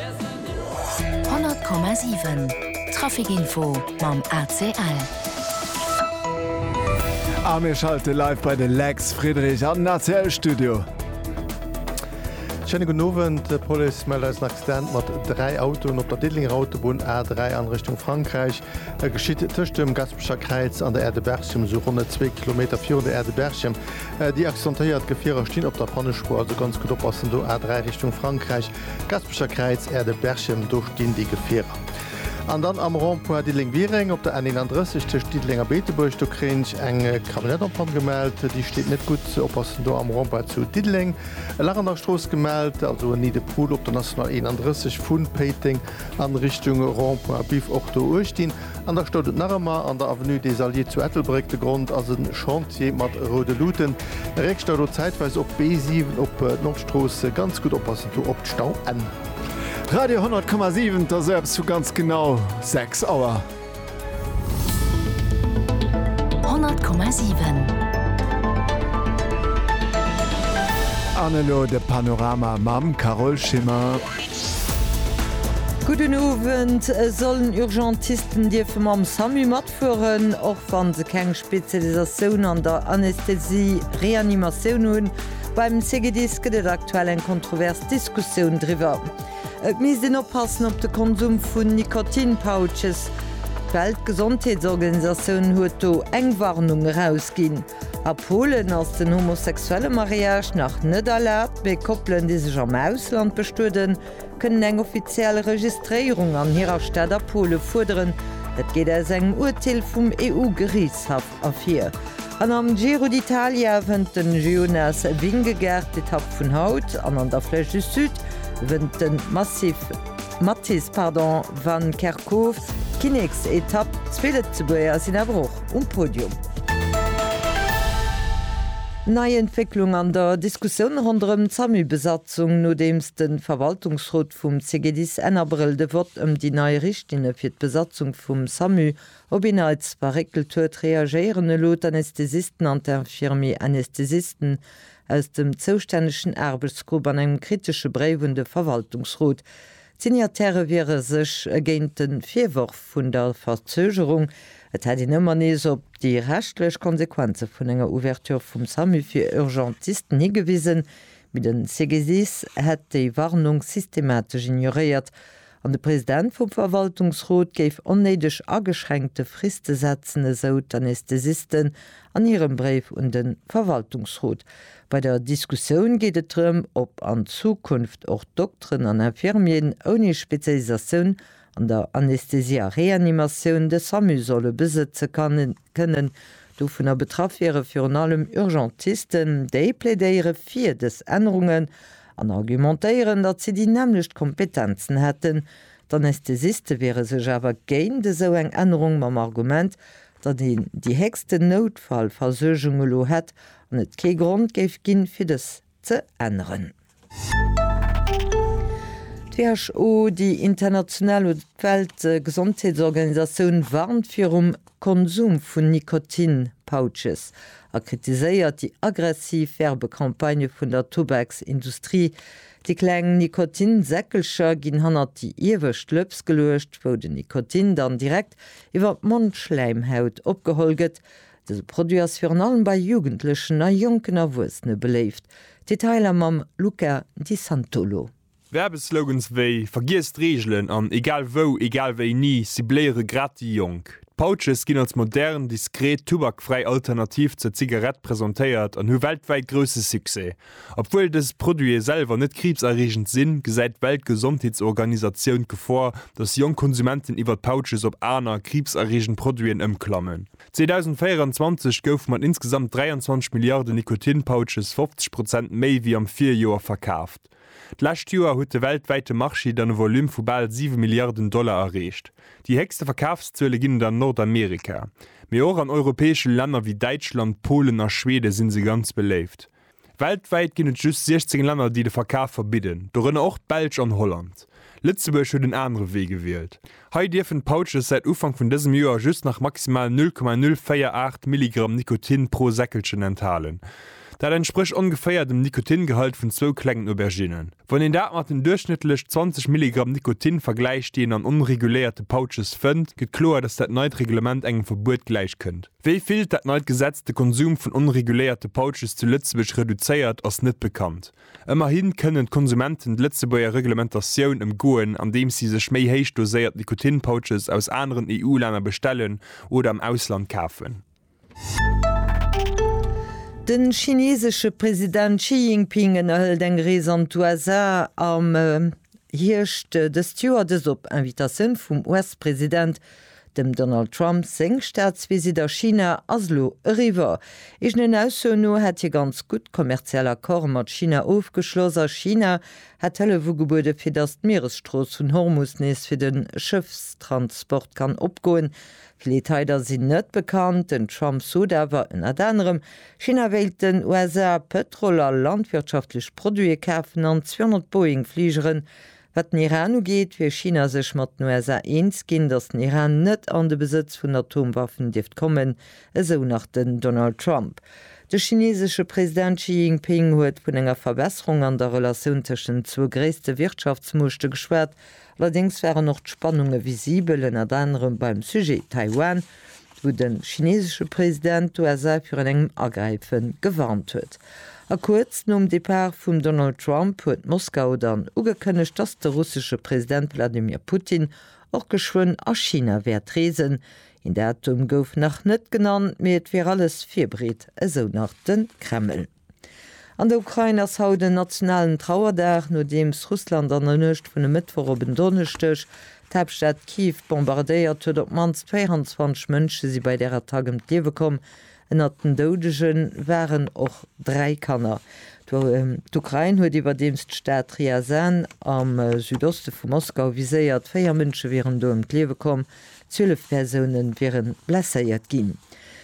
100,7 Trafic Info mam ACL. A mir schalte live bei de Lex Friedrich an den ACL Studio. Schéine gudden Owend. D'Police mellt eis en Accident mat dräi Autoen op der Diddelénger Autobunn A3 an Richtung Frankräich. E geschitt tëscht dem Gaspecher Kräiz an der Aire de Berchem, sou ronne zwee Kilometer virun der Aire de Berchem. Déi accidentéiert Gefierer stinn op der Pannespuer, also ganz gutt oppassen do A3 Richtung Frankräich. D'Gaspecher Kräiz, Erde, Berchem, do stinn déi Gefierer. An dann am Rond-point Diddeleng-Wireng op der N 31 tëscht Diddeleng a Beetebuerg, do kréien ech eng Camionnette en panne gemellt. Déi steet net gutt. Oppassen do am Rond-point zu Diddeleng. E Lach an der Strooss gemellt, also en Nid-de-Poule op der National 31 vu Péiteng an Richtung Rond-point Biff och do uechtdin. An da stout et nach ëmmer an der Avenue des Alliés zu Ettelbréck. De Grond ass e Chantier mat roude Luuten. Réckstau do zäitweis op d'B7, op d'Nordstrooss. Ganz gutt oppassen do op d'Stauenn. Radio 100 Komma 7, et ass eppes vu ganz genau 6 Auer. 100 Komma 7. An elo de Panorama mam Carole Schimmer. Gudden Owend. Sollen Urgentisten dierfe mam Samu matfueren, och wa se keng Spezialisatioun an der Anästhesie-Reanimatioun hunn? Beim CGDIS gëtt et aktuell eng kontrovers Diskussioun driwwer. Et misst een oppassen op de Konsum vun Nikotin-Pouches. D'Weltgesondheetsorganisatioun huet do eng Warnung erausginn. A Polen ass den homosexuelle Mariage nach net erlaabt, mee Koppelen, déi sech am Ausland bestueden, kënnen eng offiziell Registréierung an hirer Stad a Pole fuerderen. Dat geet aus engem Urteel vum EU-Geriichtshaff ervir. An am Giro d'Italia wënnt de Jonas Vingegaard d'Etapp vun haut an an der Flèche du Sud wënnt de Mathis van Kerkhoven. Koof, Kinneksetapp, zwee Lëtzebuerger sinn awer och um Podium. Nei Entwécklung an der Diskussioun ronderëm d'SAMU-Besatzung, nodeems de Verwaltungsrot vum CGDIS Enn Abrëll de Vott ëm déi nei Richtlinne fir d'Besatzung vum SAMU op een Neits verréckelt huet, reagéieren elo d'Anesthesisten an d'Infirmier-Anesthesisten aus dem zoustännegen Aarbechtsgrupp an engem kritesche Bréif un de Verwaltungsrot. D'Signataire wiere sech géint de Virworf vun der Verzögerung, et hätt een ëmmer nees op déi rechtlech Konsequenze vun enger Ouverture vum Samu fir Urgentisten higewisen, mee de Segesis hätt déi Warnung systematesch ignoréiert an de President vum Verwaltungsrot géif onnéideg ageschränkte Friste setzen, esou d'Anesthesisten an hirem Bréif un de Verwaltungsrot. Bei der Diskussioun geet et drëm, ob an Zukunft och Dokteren an Infirmieren ouni Spezialisatioun an der Anästhesie a Reanimatioun de Samu solle besëtze kënnen. Dovunner betraff wiere virun allem Urgentisten. Déi plädéiere fir dës Ännerungen an argumentéieren, datt si déi nämmlecht Kompetenzen hätten. D'Anästhesiste wiere sech awer géint esou eng Ännerung, mam Argument, datt een déi héchsten Noutfallversuergung elo hätt an et kee Grond géif ginn, fir dës ze änneren. D'WHO, déi international oder d'Weltgesondheetsorganisatioun, warnt virum Konsum vun Nikotin-Pouches a kritiséiert déi aggressiv Werbecampagne vun der Tubaks-Industrie, Déi kleng Nikotinsäckelcher ginn hannert déi iewescht Lëps geluecht, wou den Nikotin dann direkt iwwer d'Mondschläimhaut opgeholl gëtt. Dëse Produit ass virun allem bei Jugendlechen a jonken Erwuessene beléift. Detailer mam Luca Di Santolo. Werbeslogans wéi Vergiess d'Reegelen an Egal wou, egal wéini cibléiere grad déi Jonk. D'Pouches ginn als modern, diskret, tubakfräi Alternativ zur Zigarett presentéiert an hu weltwäit grousse Succès. Obwuel dës Produite selwer net kriibserreegend sinn, gesäit d'Weltgesondheetsorganisatioun d'Gefor, datt jonk Konsumenten iwwer d'Pouches op aner, kriibserreegend Produiten ëmklammen. 2024 goufe mat insgesamt 23 Milliarde Nikotin-Pouches 50 Prozent méi wéi am Virjoer verkaaft. D'lescht Joer huet de weltwäite Marché dann e Volume vu bal siwe Milliarden Dollar erreecht. Déi héchste Verkafszuele ginn et an Nordamerika, mee och an europäesche Länner wéi Däitschland, Polen a Schweden si se ganz beléift. Weltwäit ginn et just 16 Länner, déi de Verkaf verbidden, dorënner och d'Belsch an Holland. Lëtzebuerg huet en anere Wee gewielt. Hei dierfen d'Pouches säit Ufank vun dësem Joer just nach maximal 0,048 Milligramm Nikotin pro Säckelchen enthalen. Dat entsprécht ongeféier dem Nikotingehalt vun zwou klengen Auberginnen. Wann een dat mat den duerchschnëttlech 20 Milligramm Nikotin vergläicht, déi een an onreguléierte Pouches fënnt, gëtt kloer, datt dat neit Reglement engem Verbuet gläichkënnt. Wéi vill dat neit Gesetz de Konsum vun onreguléierte Pouches zu Lëtzebuerg reduzéiert, ass net bekannt. Ëmmerhi kënnen d'Konsumenten d'Lëtzebuerger Reglementatioun ëmgoen, andeems si sech méi héich doséiert Nikotin-Pouches aus aneren EU-Länner bestellen oder am Ausland kafen. De chinesesche President Xi Jinping ënnerhëlt eng Rees an d'USA am Hierscht dëst Joer, dëst op Invitatioun vum US-President. Dem Donald Trump seng Staatsvisitt a China ass elo eriwwer. Eegenen Aussoen no hätt hie ganz gutt kommerziell Accorde mat China ofgeschloss a China hätt Hëllef ugebueden, fir datt d'Mieresstrooss vun Hormus nees fir de Schëffstransport kann opgoen. Vill Detailer sinn net bekannt. Den Trump sot awer ënnert anerem, China wéilt den USA Pëtrol a landwirtschaftlech Produite kafen an 200 Boeing-Fligeren. Wat den Iran ugeet, wier China sech mat den USA eens ginn, datt den Iran net an de Besëtz vun Atomwaffen dierft kommen, esou nach den Donald Trump. De chineesesche President Xi Jinping huet vun enger Verbesserung an der Relatioun tëschent den zwou gréisste Wirtschaftsmuechte geschwat Allerdéngs waren och d'Spannunge visibel, ënnert anerem beim Sujet Taiwan, wou de chineesesche President d'USA virun engem Agräife gewarnt huet. A kuerz nom Depart vum Donald Trump huet Moskau dann ugekënnegt, dass de russesche President Wladimir Putin och geschwënn a China wäert reesen. Een Datum gouf nach net genannt, mee et wier alles virbereet, esou nach de Kreml. An der Ukrain ass haut en nationalen Trauerdag, nodeems Russland an der Nuecht vun e Mëttwoch op en Donneschdeg d'Haaptstad Kiew bombardéiert huet. Op d'mannst 24 Mënsche si bei där Attack ëm d'Liewe komm. Ënnert den Doudege waren och dräi Kanner. D'Ukrain huet iwwerdeems d'Stad Ryazan am Südoste vu Moskau viséiert. Véier Mënsche wieren do ëm d'Liewe komm, zwielef Persoune wiere blesséiert ginn.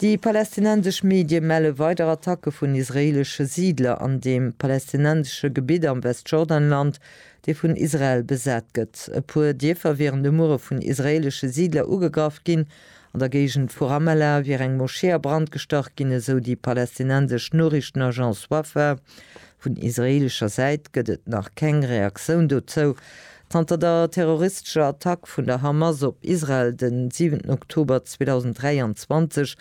Déi palästinensesch Medie melle weider Attacke vun israeelesche Siidler an deem palästinensesche Gebitt am Westjordanland, dee vun Israel besat gëtt. E puer Dierfer wieren de Muere vun israeelesche Siidler ugegraff ginn. An der Géigend vu Ramallah wier eng Moschee a Brand gestach ginn, esou déi palästinensesch Noriichtenagence Wafa. Vun israeelescher Säit gëtt et nach keng Reaktioun dozou. Zanter der terroristescher Attack vun der Hamas op Israel den 7 Oktober 2023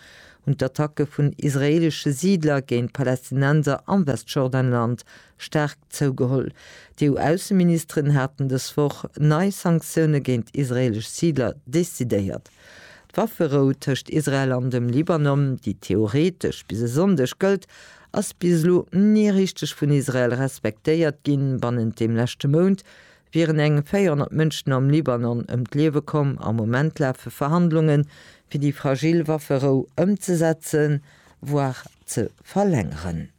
hunn d'Attacke vun israeelesche Siidler géint Palästinenser am Westjordanland staark zougeholl. D'EU-Ausseministeren haten dës Woch nei Sanktioune géint israeelesch Siidler decidéiert. D'Wafferou tëscht Israel an dem Libanon, déi theoreetesch bis e Sonndeg gëllt, ass bis elo ni richteg vun Israel respektéiert ginn. Bannent dem leschte Mount wieren eng 400 Mënschen am Libanon ëm d'Liewe komm. Am Moment lafe Verhandlunge fir déi fragil Wafferou ëmzesetzen, voire ze verlängeren.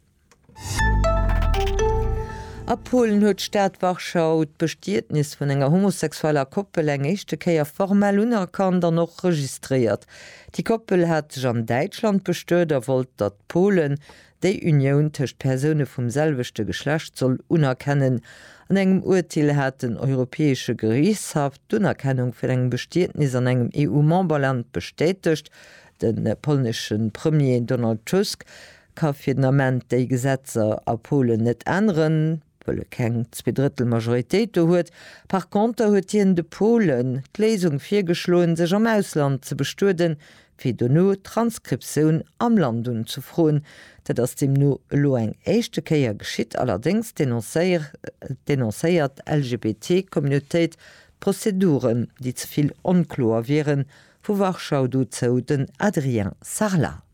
A Polen huet d'Stad Warschau d'Bestietnis vun enger homosexueller Koppel eng éischte Kéier formell unerkannt an och registréiert. Déi Koppel hat sech an Däitschland bestuet a wollt, datt Polen déi Unioun tëscht Persoune vum selwechte Geschlecht soll unerkennen. An engem Urteel hat den Europäesche Geriichtshaff d'Unerkennung vun engem Bestietnis an engem EU-Memberland bestätegt. De polnesche Premier Donald Tusk ka fir den Ament déi Gesetzer a Polen net änneren. wëll e keng Zweedrëttelmajoritéit do huet. Par conter huet hien de Polen d'Léisung virgeschloen, sech am Ausland ze bestueden, fir dono d'Transkriptioun am Land unzefroen. Dat ass deemno elo eng éischte Kéier geschitt, allerdéngs denoncéiert d'LGBTI-Communautéit d'Prozeduren, déi ze vill onkloer wieren, vu Warschau dozou den Adrien Sarlat.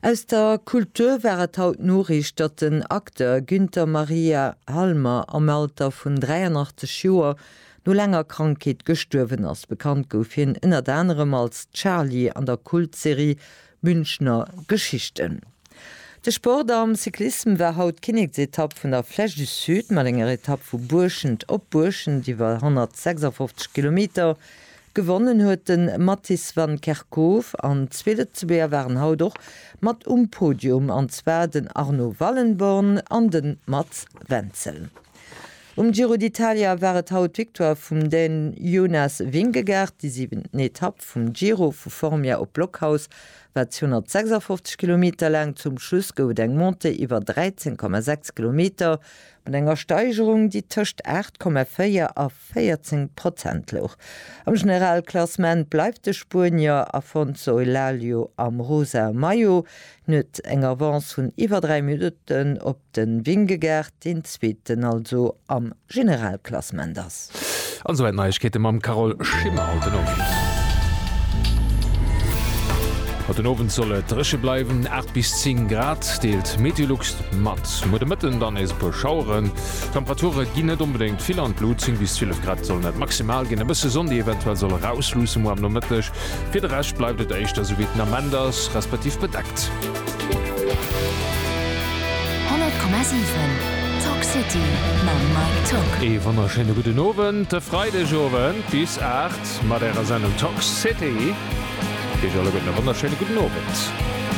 Aus der Kultur war et haut d'Noriicht, datt den Acteur Günther Maria Halmer am Alter vun 83 Joer no laanger Krankheet gestuerwen ass. Bekannt gouf hien ënnert anerem als Charly an der Kultserie Münchner Geschichten. De Sport am Cyclissem war haut d'Kinneksetapp vun der Flèche du Sud mat enger Etapp vu Buerschent op Buerschent iwwer 156 Kilometer. Gewonnen huet de Matthijs van Kerkhove an zwee Lëtzebuerger waren haut och mat um Podium, an zwar den Arno Wallenborn an de Mats Wenzel. Um Giro d'Italia war et haut d'Victoire vum Dän Jonas Vingegaard. Déi siwent Etapp vum Giro vu Formia op Blockhaus war 256 Kilometer laang. Zum Schluss gouf et eng Montée iwwer 13,6 Kilometer mat enger Steigerung, déi tëscht 8,4 a 14 Prozent louch. Am Generalklassement bleift de Spuenier Afonso Elalio am rosa Maillot nuet eng Avance vun iwwer 3 Minutten op de Vingegaard, deen Zweeten also am Generalklassement ass. An souwäit Neiegkeete mam Carole Schimmer haut den Owend. Haut den Owend soll et dréche bleiwen, 8 bis 10 Grad deelt d'Meteolux mat. Muer de Mëtten dann nees e puer Schaueren. D'Temperature ginn net onbedéngt vill an d'Lut, 10 bis 12 Grad sollen dat maximal ginn. E bësse Sonn, déi eventuell soll erausluusse muer am Nomëtteg. Fir de Rescht bleift et éischter esou wéi et den Ament ass, respektiv bedeckt. 100,7 Talk City mam Mike Tock. Ee wonnerschéine gudden Owend e Freidegowend bis 8 mat Ärer Sendung Talk City. Iech alleguerten e wonnerschéine gudden Owend.